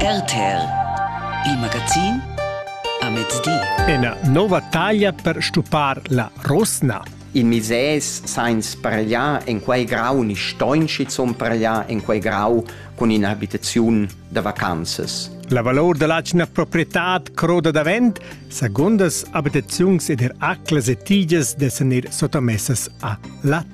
RTL Il magazin a mezdi. Ena nova taglia per stupar la rosna. In mises sainz parliar en quei grau ni stoin schizun parliar en quei grau cun in'abitaziun da vacanzas. La valor dall'atgna proprietad croda davent, segundas abitaziuns ed er aclas e tigias dessan ir sottamessas a la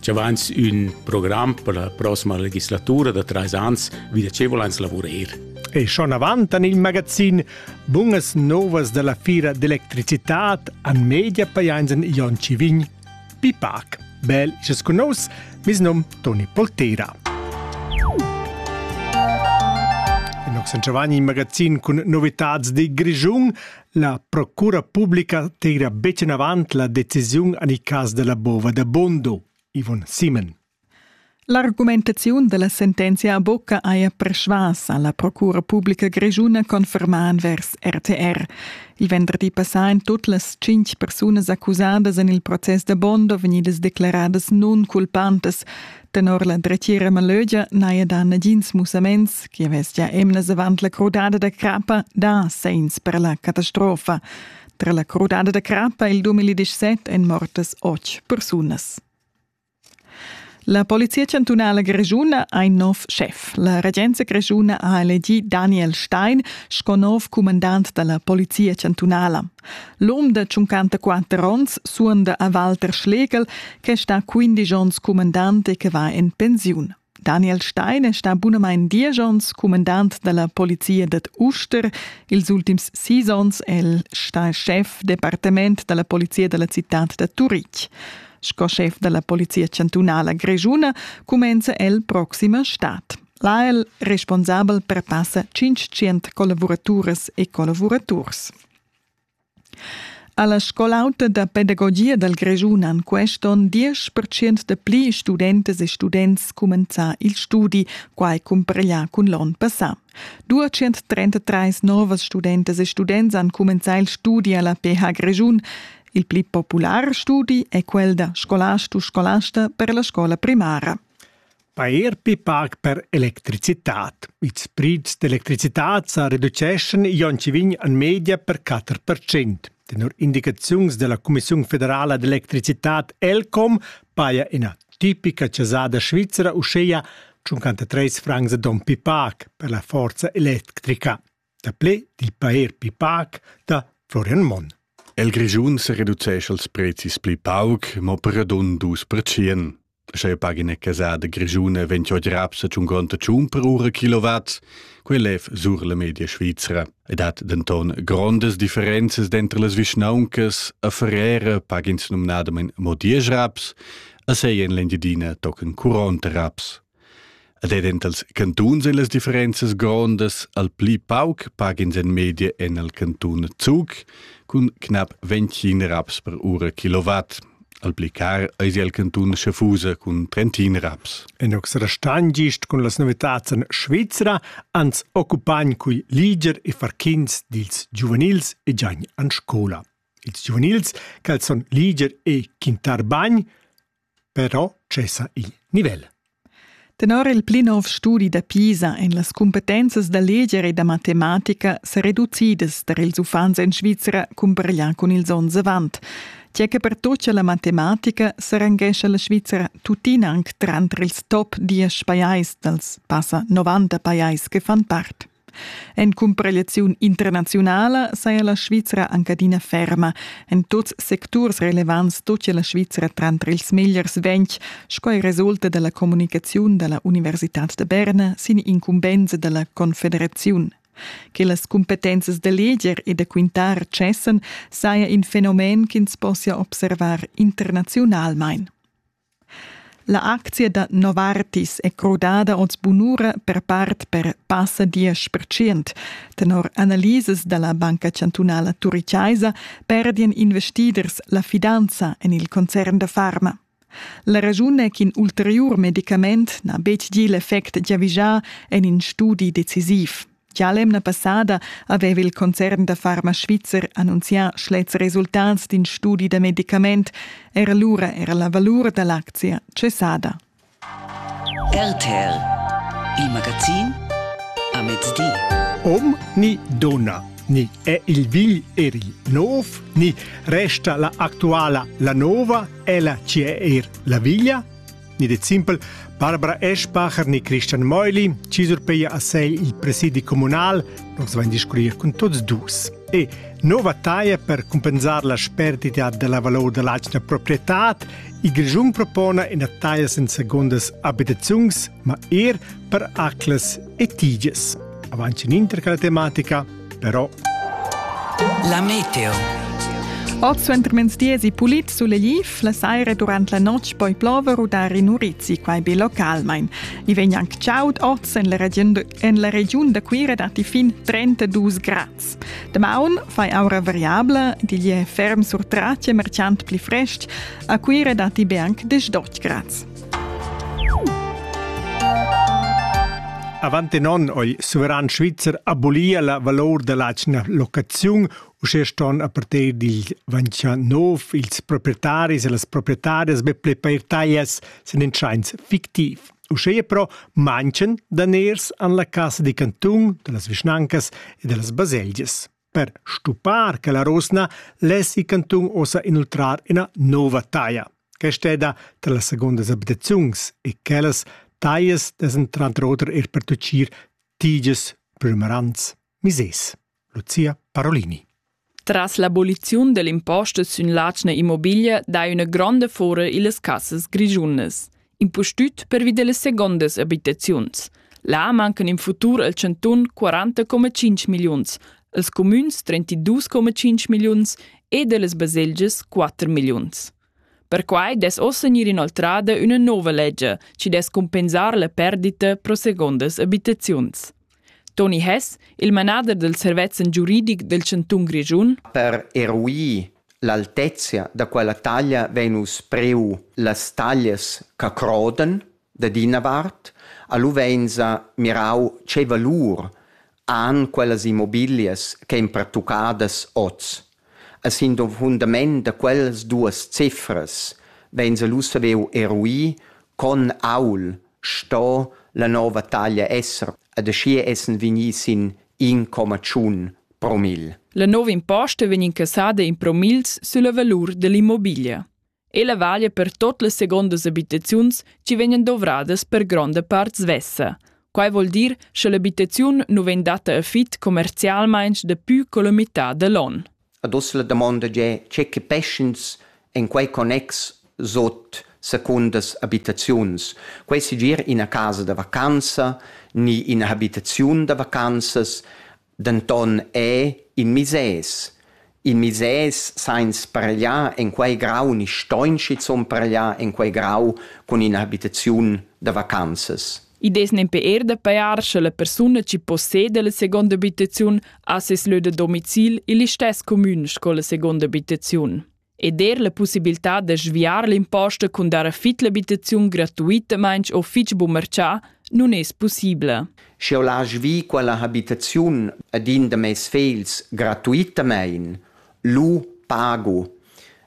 Ci avans ün program per la prossima legislatura da trais ans, vi da ce volans lavurer? E schon avant an il magazin Bungas novas della fira d'electricitat an media paianzen Jon Civign Pipac. Bel, isas con nos, mis nom Toni Poltera. In Oxen Giovanni in magazin cun novitats di Grischun La procura publica tegra betg enavant la decisiun en il cas da la bova da Bondo, Yvonne Simon. L'argumentaziun da la sentenzia a bocca haja persvas a la Procura publica grischuna confermà envers RTR. Il venderdi passà èn tut las tschintg persunas accusadas en il process da Bondo vegnidas declaradas nunculpantas. Tenor la dretgira Malögia n'haja da nagins mussaments che avess gia emnas avant la crudada da crappa dà segns per la catastrofa. Tra la crudada da crappa e il 2017 èn mortas otg persunas. La polizia chantunala grischuna ha in nov schef. La regenza grischuna ha elegì Daniel Stein sco nov cumandant da la polizia chantunala. L'um da 54 onns suonda a Walter Schlegel, che sta 15 onns cumandant e che va en pensiun. Daniel Stein è sta bunamain diesch onns cumandant dalla polizia dad Uster. Ils ultims sis onns è el sta chef departement dalla polizia dalla cittad da Turitg. Sco chef dalla polizia chantunala grischuna cumenza el proxima stad. Là è el responsabel per passa 500 collavuraturas e collavuraturs. Alla scol'auta da pedagogia dal Grischun han quest onn 10% da pli studentas e students cumenzà il studi, quai cumpareglià cun l'onn passà. 233 novas studentas e students han cumenzà il studi alla PH Grischun. Il pli popular studi è quel da scolastus scolasta per la scola primara. Pair pli pac per electricitat. Ils prids d'electricitat sa reduceschan ion chi vegn en media per 4%. Tenor indicaziuns della Cumissiun federala d'electricitat ELCOM paja ina tipica casada svizzera uscheia 53 francs a don pi pac per la forza electrica. Daplè dil paer pli pac da Florian Monn. El Grischun se reducescha els prezis pli pauc, mo per radun dus percien. Sche pagina casada grischuna 28 raps a congonta tschun per ura kilowatt, quei lev sur la media svizra. Ed hat denton grondas differenzas dentro las vischnauncas, a Ferrera pagins nomnadamen mo 10 raps, a sei en l'Engiadina tochen 40 raps. Ed ed entals cantuns e las differenzas grondas al pli pauc pagins en media en al cantun Zug cun knap 25 raps per ura kilovat. Al pli car eis il cantun Schaffusa cun 30 raps. En Oxerastan gist cun las novitads en Svizra ans occupagn cui liger e farchins dils giuvenils e giain an scola. Ils giuvenils, cal son liger e quintar bagn, però tschessa il nivel. Tenor il pli nov studi da Pisa èn las cumpetenzas da leger e da matematica sa reducidas tar ils uffants en Svizra cumpareglià cun ils onns avant. Tge che pertocca la matematica s'arrangescha la Svizra tuttina anc tranter ils top diesch pajais dals passa 90 pajais che fan part. En cumparegliaziun internaziunala saja la Svizra anc adina ferma. En tuts secturs relevants stoppia la Svizra tranter ils megliers ventg, sco ei resulta dalla communicaziun dalla Universitad da Berna sin incumbensa dalla Confederaziun. Che las cumpetenzas da leger e da quintar cessan saja in fenomen ch'ins possia observar internaziunalmein. La aczia da Novartis è crudada oz bunura per part per passa diesch percent. Tenor analisas da la Banca chantunala turichaisa perdian investiders la fidanza en il concern da farma. La raschun è ch'in ulteriur medicament n'ha betg gì l'effect giavischà en in studi decisiv. Gia l'emna passada aveva il concern da Pharma Svizzer annunzià schlets resultats d'in studi da medicament. Era lura era la valur da l'aczia cessada. RTL, il magazin a mezdi. Om ni donna ni è il vigl eri nov, ni resta la actuala la nova, ella ci è er la viglia? ni det simpel Barbara Eschbacher ni Christian Meuli ci surpeia a sei il presidi comunal, nos vain discurrir cun tots dus. E nova taia per compensar la spertità della valor dell'atgna proprietà, il Grischun propona ina taia sen secondas abitaziuns, ma er per aclas e tiges. Avanti in inter quella tematica, però. La meteo. Oz suentermezdi esi pulit sulegliv, la saira durant la notg poi plover u dar in urizi, quai be localmain. I vegn anc chaud oz en la regiun, en la regiun da Cuira datti fin 32 grads. Damaun fai aura variabla, digl è ferm sur tratge merchant pli frestg, a Cuira datti be anc 18 grads. Avant in onn ha il suveran svizzer abolia la valor dall'atgna locaziun, uschè ston a partir dil 29 ils proprietaris e las proprietarias be pli per taglias sin in tschains fictiv. Uschè però manchen daners an la Casa di Cantun, da las vischnancas e da las baselgias. Per stuppar quella rusna lessi cantun ussa inoltrar ina nova taglia, che steda tra las segundas abitaziuns e quellas taglias dessen tranter oter er pertuccir tiges prümerants misers. Lucia Parolini. Tras l'aboliziun dell'imposta sün l'atgna immobiglia dai üna gronda fora illas cassas grischunas. impustüt pervi dellas segondas abitaziuns. Là mancan in futur al Chanton 40,5 milliuns, als comüns 32,5 milliuns e dellas baselgias 4 milliuns. Perquai des ossa gnir inoltrada üna nova legge, ci des compensar la perdita pro segondas abitaziuns. Toni Hess, il manader dal servetsch giuridic del chantun Grischun. Per eruir l'altezia da quella taglia vein uss priu las taglias che crodan dad ina vart, a lu vein sa mirau tgei valur han quellas immobilias ch'ein pertuccadas oz. A sin fundament da quellas duas cifras vegn lu saviu eruir con aul sto la nova taglia esser ed aschia essen vegni sin in comma tschun promil. La nova imposta vegn incassada in promils sulla valur dall'immobiglia. Ella valia per tot las segondas abitaziuns chi vegnan dovradas per gronda part svessa. Quai vuol dir cha l'abitaziun nu vegn datta a fit commercialmaing dapü co la mità da l'on. Ad uss la damonda è tge che peschens en quei connex sot secundas abitaziuns. Quei sigir ina casa da vacanza ni ina habitaziun da vacanzas Denton è in misès, in misès sainz spargliar en quei grau ni stoin schizun pargliar en quei grau cun in'habitaziun da vacanzas. I dess nempe er da pajar sche la persuna chi posseda la seconda abitaziun ha ses lö da domicil ill istess comün sco la seconda abitaziun. ed er la pussibiltà da sviar l'imposta cun dar fit l'abitaziun gratuitamain o fitg bu marchà non es pussibla. Sch'eu laj vi quella habitaziun ad in da meis fegls gratuitamaing, lu pagu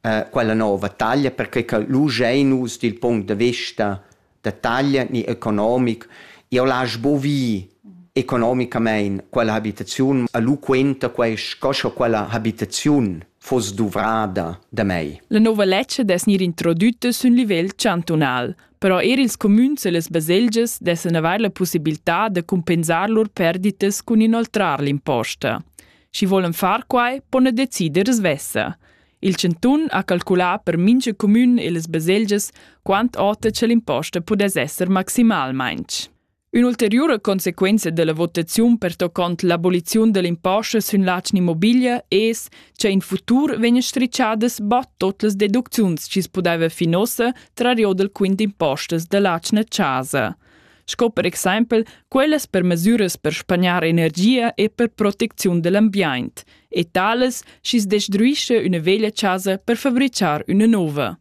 eh, quella nova taglia perche che lu giain nus dil punct da vista da taglia ni economic. Eu l'hasch bo vi economicamaing quella habitaziun a lu quenta quai sco scho quella habitaziun foss duvrada da mei. La nova ledscha dess gnir introdütta sün livel chantunal, però eir ils cumüns e las baselgias dessan avair la pussibiltà da cumpensar lur perditas cun inoltrar l'imposta. Schi volan far quai, pon decider svessa. Il chantun ha calculà per mintga cumün e las baselgias quant ota che l'imposta pudess esser maximalmain. Ün'ulteriura consequenza della votaziun pertoccont l'aboliziun dell'imposta sün l'atgna immobilia es che in futur vegn stricciadas bod tot las deducziuns chi's pudeva fin ossa tra rio del quint impostas dell'atgna chasa. sco per exempel quellas per mesiras per spagnar energia e per protecziun dell'ambient e tales schi's destruisce üna veglia chasa per fabrichar üna nouva.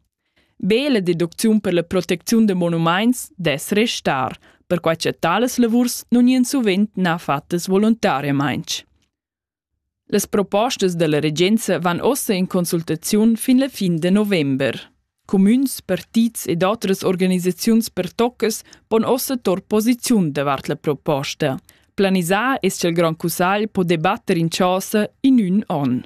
Be la deducziun per la protecziun da monumaints dess restar, perquai che tales lavurs nun gnien suvent na fattas volontariamaing. Las propostas dalla regenza van ossa in consultaziun fin la fin de november. Cumüns, partits ed otras organisaziuns pertoccas pon ossa tor posiziun davart la proposta. Planisar es ch'el grand cussagl po debatter in chasa in ün on.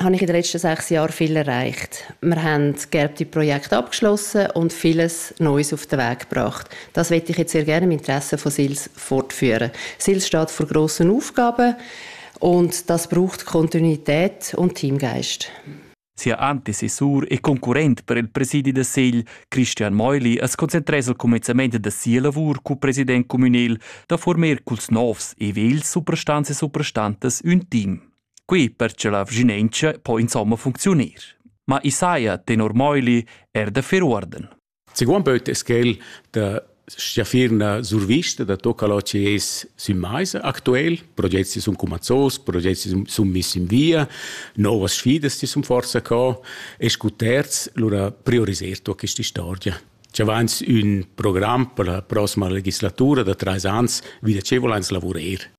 habe ich in den letzten sechs Jahren viel erreicht. Wir haben gelbe Projekte abgeschlossen und vieles Neues auf den Weg gebracht. Das möchte ich jetzt sehr gerne im Interesse von SILS fortführen. SILS steht vor grossen Aufgaben und das braucht Kontinuität und Teamgeist. Sia Antecessor e concurrent per il presidi da Segl, Christian Meuli, es concentrés al comenzament da sia lavur cu president communal da former culs novs e vels suprastanze e suprastantas ün team. Qui per che la vginentscha po insomma funcziunir. Ma i saja tenor Meuli er da fer uorden. Seguan pöt es quel da stiafir na survista da tocca lo che es sün maisa aktuell, progetti sun cumazzos, progetti sun missi in via, novas sfidas ti sun forza co e scu terz lura prioriserto questa storia. Ci avanz ün program per la prossima legislatura da treis ans, wieder ce volans lavurer.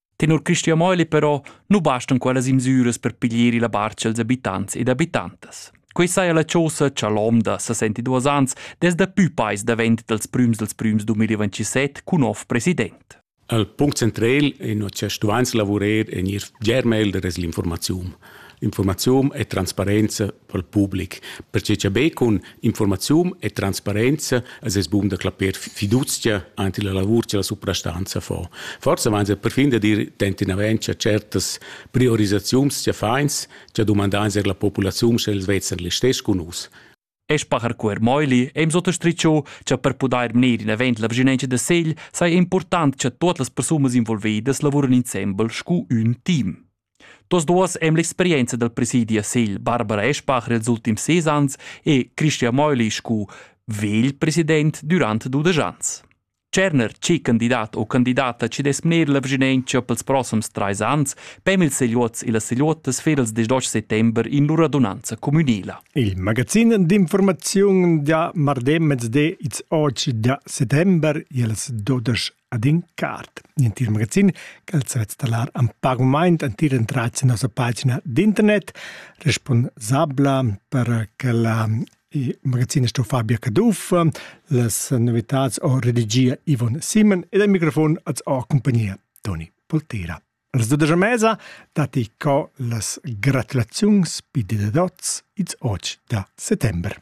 Tenor Cristian Meuli però nu bastan quellas imsüras per piglier illa barcha als abitants ed abitantas. Quei saja la chosa cha l'omda, 62 ans, des da pü pais davent dals prüms dels prüms 2027 cun nov president. Al punct central è che stuvains lavurer e gnir germel de l'informazione. Informazione e transparenza pel public, perche cha be cun informaziun e transparenza es es bun da clapper fiduzia ant illa lavur cha la suprastanza fa. Forsa vains a perfin da dir tentinavent cha certas priorisaziuns cha fains cha dumandans eir la populaziun sch'els vezan listess cun nus. Espacher cuer Meuli è sottostricciò che per pudair mener in avent la vigilenza da segl sai è important che tuot las persunas involvedas lavuran insembel scu ün team. Tos duos e'm l'experienza dal presidi a Segl, Barbara Eschbach nels ultims ses ans e Christian Meuli scu vegl president dürant dudesch ans. Tscherner chi candidat o candidata chi dess mner la vschinentscha pels prossims trais ans pem ils segliuots e las segliuottas fer ils desch settember in lur adunanza cumünela. Il magazin d'informaziun da mardi mezdi its oci da settember i'ls dudesch ad in cart, l'entir magazin ch'els sa installar en pac moment entir entrat sin nossa pagina d'internet responsabla per che la il magazin sto Fabia Caduff, las novitads o redigia Ivon Simon ed al microfon als ho compagnia Toni Poltera. Resuda da mesa datti co las gratulaziuns pi de dots its och da settember.